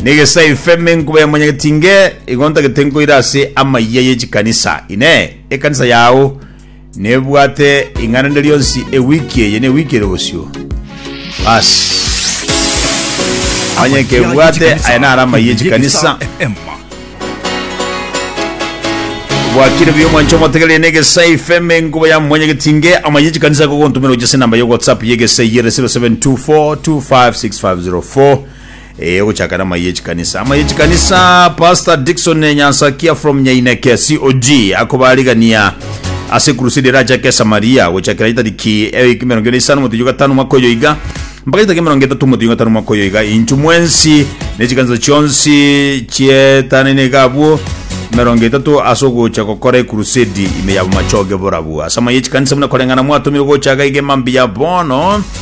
Negesai feme nkobe monyegeti inge, igo ntagete nkoire ase amayia ye chikanisa. Inee! Ekanisa yao nebwate ing'ana rinde rionsi ewiki eye ne ewiki ere bosio? Basi. Onye kebwate, aya naro amayia ye chikanisa. Bwakire buya omwanche omotegereri negesai feme nkobe ya monyegeti inge, amayia ye chikanisa akogontumera gochia ase enamba ya WhatsApp ye egesai ere 0724256504. Ee ogochakera amaiga echikanisa amaiga echikanisa Pastor Dickson Nyansakia from Nyaineke COG akobarigania ase crusade erachake Samaria gochakera itariki ewiki mirongo ere isano motienyi gatano mwaka oyo iga mpaka itariki mirongo etatu motienyi gatano mwaka oyo iga inchu mwensi nechikanisa chionsi chietanaine iga abwo mirongo etatu ase ogocha gokora ekurusedi ime yabo machoge borabu ase amaiga echikanisa buna koreng'ana mwatomire gochaga iga emambi ya bono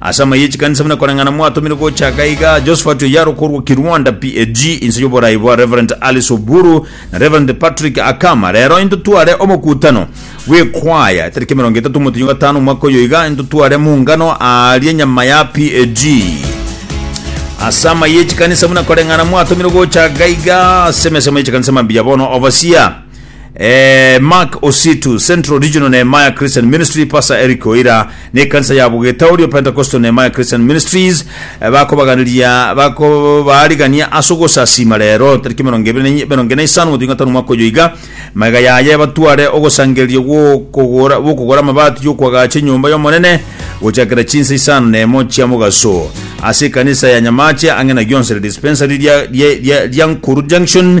Ase amaye chikanisa buna koreng'ana mwatomirwe gochaka iga, Josphat Oyaro korwa Kirwanda, PAG, inse y'oborai bwa Rev. Alice Oburu na Rev. Patrick Akama. Rero intotware omokutano bw'ekwaya etariki emerongo etato omotenyo gatano omwaka oyo iga intotware mungano aaria nyama ya PAG. Ase amaye chikanisa buna koreng'ana mwatomirwe gochaka iga, ase emesemo y'echikanisa mambia bono overseer. Eh, Mark Ositu, Central Regional Nehemiah Christian Ministry, Pastor Eric Oira, ne ekanisa ya Bogetauri of Pentecostal Nehemiah Christian Ministries, eh, bakobaganiria bakobaarigania ase ogosasiima rero tariki emerongo ebere na enye- emerongo ene isano gotuika gatano omwaka oyo iga magega yaye batware ogosangereria gw'okogora gw'okogora amabati y'okwagacha enyomba y'omonene gochakera chinsa isano na emo chia mogaso ase ekanisa ya nyamache ang'e na gionsi re dispensary ria- ria- ria- ria nkuru junction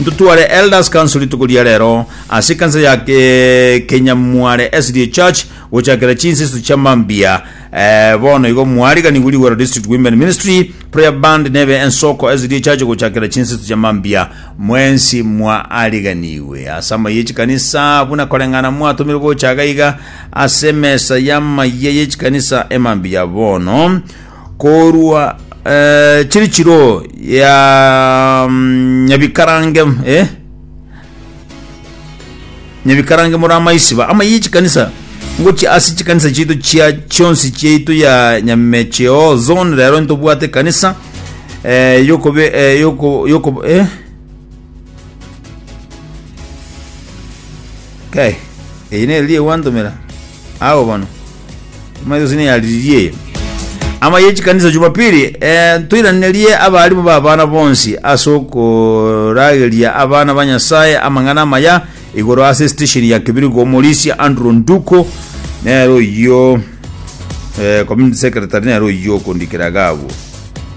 Ntotware Elders Council rituko ria rero ase ekanisa ya Kenyamware SDA Church gochakera chinseso chia mambia. Ee, bono igo mwariganiwe Ligwero District Women Ministry Prayer Band nebe Ensoko SDA Church gochakera chinseso chia mambia. Mwensi mwaariganiwe ase amayia echikanisa buna koreng'ana mwatomirwe gocha gaiga ase emesa y'amayia y'echikanisa emambia bono. Korwa eh, chiri chiro ya mm, nyabikarange eh? nyabikarange muri amaisiba ama yi chikanisa ngochi ase chikanisa chiaito chia chionsi chiaito ya nyamecheo zone rero ntobwate kanisa eh, yokobe eh, yoko, yoko, eh? Kai, eye nere riria gwantomera? Agwo bono. Omanyete gose neyariririe eye. Ama ye chikanisa Jumapili, eh, ntoiranerie abarimu ba abana bonsi ase okorageria abana ba Nyasaye amang'ana amaya igoro ase estation ya Kibirigo Omorisia Andrew Nduko nere oyio eh, community secretary nere oyio okondikera iga abwo.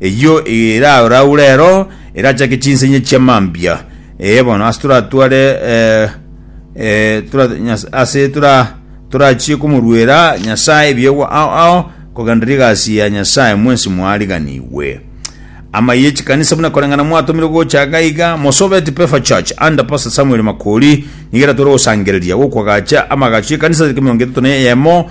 Eyio erauraure ero erachake chinsenye chia mambia. Ee bono ase toratware eh, eh, tora, nyas, ase tora torachie komoruera Nyasae ebiegwa ao ao kogenderera egasi ya Nyasae mwensi mwariganigwe. Amaiyo echikanisa buna koreng'ana mwatomire gochaka iga Mosobeti Pefa Church under Pastor Samuel Makori nigo eratore gosangereria gokwagacha amagacho y'ekanisa tariki miongo etato na eyemo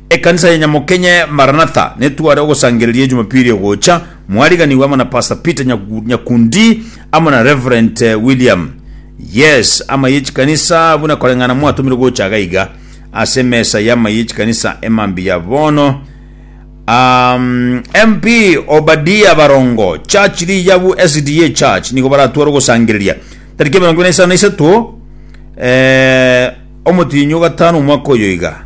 Ekanisa ya Nyamokenye Maranatha netware ogosangereria Ejumapili egocha, mwariganigwe amo na Pastor Peter Nyakundi amo na Reverent William. Yes, amaiyo echikanisa buna koreng'ana mwatomirwe gocha iga iga ase emesa y'amaiyo echikanisa emambia ya bono. Um, MP Obadia Barongo, Church Riyabu SDA Church nigo baratware ogosangereria tariki emerongo ibere na isano na isato eh, omotienyi ogatano omwaka oyo iga.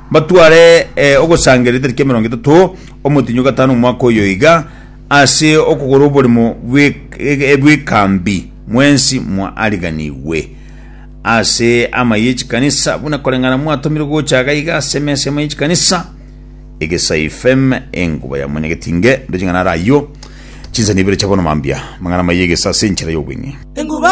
Mbatware eh, ogosangeria etari kia emerongo etato omotinyi o gatano omwaka oyo iga, ase okogora oboremo bw'e- bw'ekambi mwensi mwaariganigwe ase amaye ye chikanisa, buna koreng'ana mwatomirwe gocha iga iga ase emesa y'amaye ye chikanisa, egesai fem enguba ya mwanyagetinge, ndo ching'ana are ayio, chinsani ibere chia bono mambia, amang'ana amaya egesa ase enchera y'obweng'e. Enguba